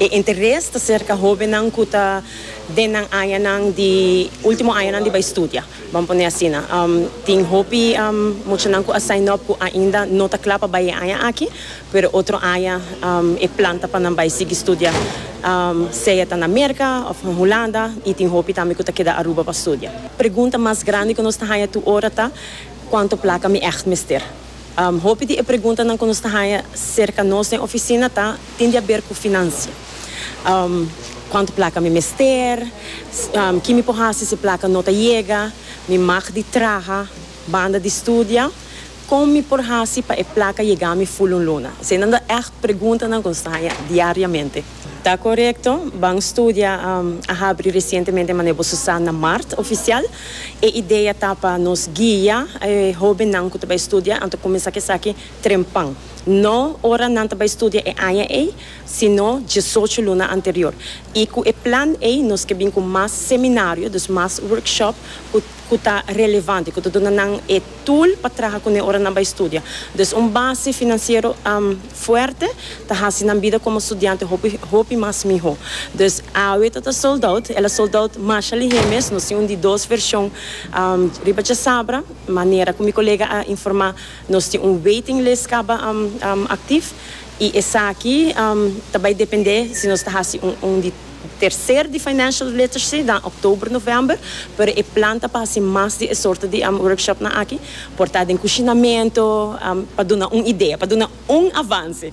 E interes ta serka hóbennan ku ta den nan añanan di último añanan di bai studia, bon pone asina. Tin hopi muchanan ku a sign up ku ainda no ta kla pa bai e aña aki, pero otro aña e plan ta pa nan bai sigui studia, sea ta na Merka òf na Hulanda, i tin hopi tambe ku ta keda Aruba pa studia. Pregunta mas grandi ku nos ta haña tur ora ta, Kuantu plaka mi ègt mester? Hopi di e preguntanan ku nos ta haña serka nos den ofisina ta. tin di aber ku finansia. Kuantu plaka mi mester, ki mi por hasi si plaka no ta yega, mi mag di traha banda di studia, kon mi por hasi pa e plaka yega mi ful un luna? Eseinan ta ègt preguntanan ku nos ta haña diariamente. Ta korekto, Ban Studia a habri resientemente manera bo su sa na mart ofisial. E idea ta pa nos guia e hóbennan ku ta bai studia, anto kuminsá ku esaki. trempan, no ora nan ta bai studia e aña ei, sino diesocho luna anterior. I ku e plan ei nos ke bin ku mas seminario, dus mas workshop ku ku ta relevante, ku ta duna nan e tool pa traha kuné ora nan bai studia. Dus un base finansiero fuerte ta hasi nan bida komo studiante hopi hopi mas mihó. Dus awe ta ta sold out, el a sold out masha lihé mes, nos tin un di dos vershon riba djasabra, manera ku mi kolega a informá Nos tin un waiting list kaba aktif i esaki ta bai dependé si nos ta hasi un di terser di financial literacy den oktober november, pero e plan ta pa hasi mas di e sorto di workshopnan aki, por ta den kushinamentu, pa duna un idea, pa duna un avanse.